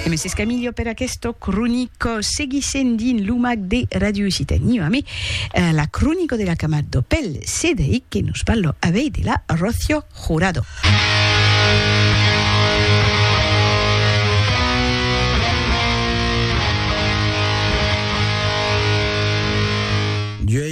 E me s'escamilho per aquesto cronico seguissent dins lo mag de Ràdio Occitània amé la cronico de la camat do pel CDI que nos parlo avei de la Rocio Jurado.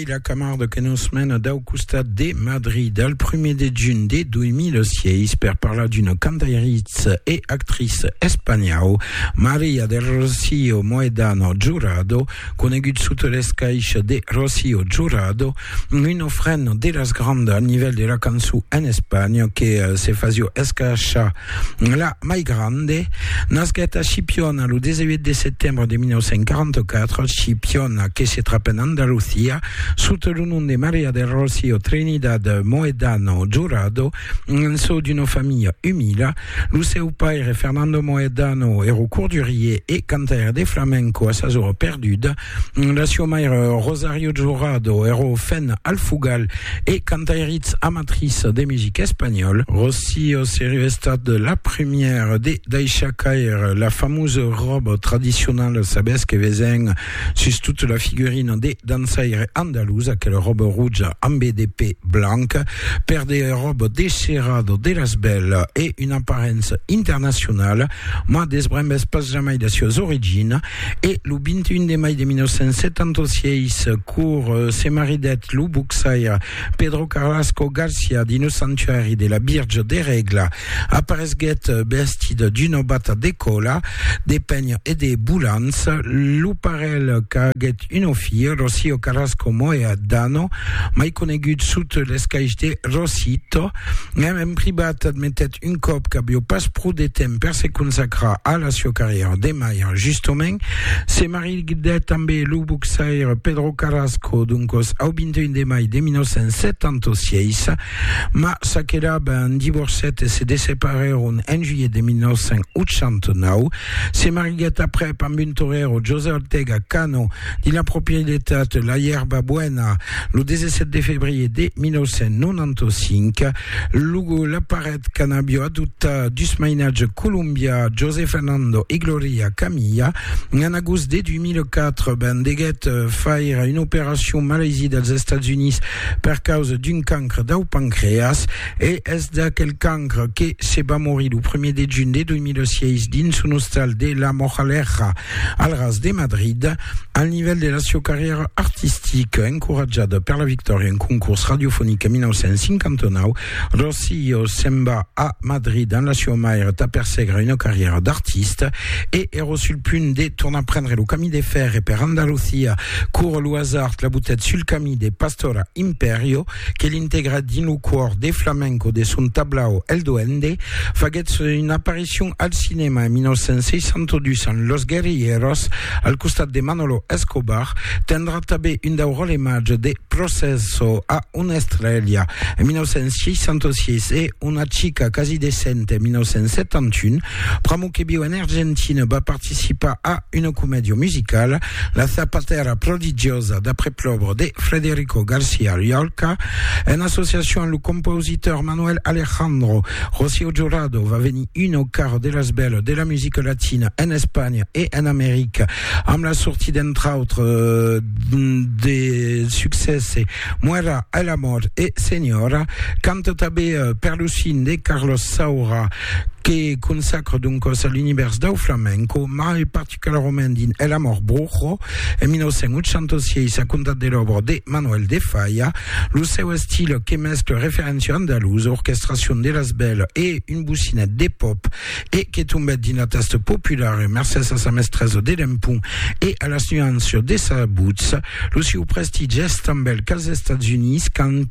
Ila Camarde que nos mena dau costat de Madrid al prumèr de junh de 2006 per parlar d'una cantairiça e actriça espanhau, Maria del Rocío Mohedano Jurado, conegut sota l'escaixa de Rocío Jurado, un ofrent de las grandas al nivèl de la cançon en Espanha que se fasió escachar La mai grande nasquèt a Chipiona lo 18 de setembre de 1944. Chipiona, que se trap en Andalusia, sota lo nom de Maria del Rocío Trinidad Mohedano Jurado, naissó d'una familha umila. Lo seu paire, Fernando Mohedano, èra cordurier e cantaire de flamenco a sa zòna perduda. La sua maire Rosario Jurado ero fen al fugal e cantairitz amatriç de music espanhòl. Rocío serio estat la première de daishar caire la famosa ròba tradicionala, sabètz que vesen sus tota la figurina de dançaire andalús, aquela ròba roja ambe de pè blanc, per de ròba desherada de las bèlas e una aparença internacionala, mas desbrembètz pas jamai de suas origina. E lo 21 de mai de 1976, cour se maridèt lo boxaire Pedro Carrasco Garcia dins lo sanctuari de la Virge de Regla. Aparesguèt vestit d'una bata de còla de pènh e de bolants. Lo parelh qu'aguèt una filha, Rocío Carrasco Moya Dano, mai conegut sot l'escaish de Rosito, mèm en privat admetèt Un còp qu'avió pas pro de temps per se consacrar a la sieu carrièra de malhar justomènt, se maridèt ambe lo boxaire Pedro Carrasco, doncòs au 21 de mai de 1976, mas s'aquela ben divorcèt e se desseparèron en juilhet de 1989. Se mariguèt aprèp amb un torero, José Ortega Cano, dins la proprietat La Yerba Buena, lo 17 de febrier de 1995. Lugo la paret qu'an'avió adoptar dus mainatge colombià José Fernando e Gloria Camilla. En agost de 2004 ben deguèt faire una operacion malaisie dels Estats Units per causa d'un cancre dau pancreas e es d'aquel cancre que se va morir lo 1er de junh de 2006 dins son ostal de La Moraleja Al ras de Madrid, al nivèl de la sieu carrièra artistica, encoratjada per la victòria en concors radiofonic en 1959, Rosillo se'n va a Madrid amb la siua maire tà persègre una carrièra d'artista e èra sul punt de tornar prendre lo camí de fèrre per Andalusia quora lo hasard l'abutèt sul camí de Pastora Imperio, que l'integra dins lo còr de flamenco de son tablau El Duende, faguèt son aparicion al cinèma en 1962 en Los Guerrilleros, al costat de Manolo Escobar, tendrà tanben un dau ròle màger de Processo a Una estrèlha en 1966 e Una chica casi decente en 1971, Pramo que viu en Argentina va participar a una comèdia musicala, La zapatera prodigiosa d'après Plobre de Frederico Garcia Llorca, en associacion amb lo compositor Manuel Alejandro. Rocío Jurado va venir un au carro de las belles de la musica latina en Espanha e en America amb la sortie d'entre autres de succèsses Muera el amor e Señora, canta tanben per lo cine de Carlos Saura. que consacre doncas a l'univèrs dau flamenco, mai particularament dins El amor brujo, en 1986, a comptat de l'òbra de Manuel de Falla, lo seu estil que mescla referéncia andalusa, orquestracion de las bèls e un bocinet de pòp, e que tombèt dins la tasta populara mercés a sa mestresa de l'empont e a las nuanças de sa votz. Lo sieu prestigi es tanben qu'als Estats Units, quand.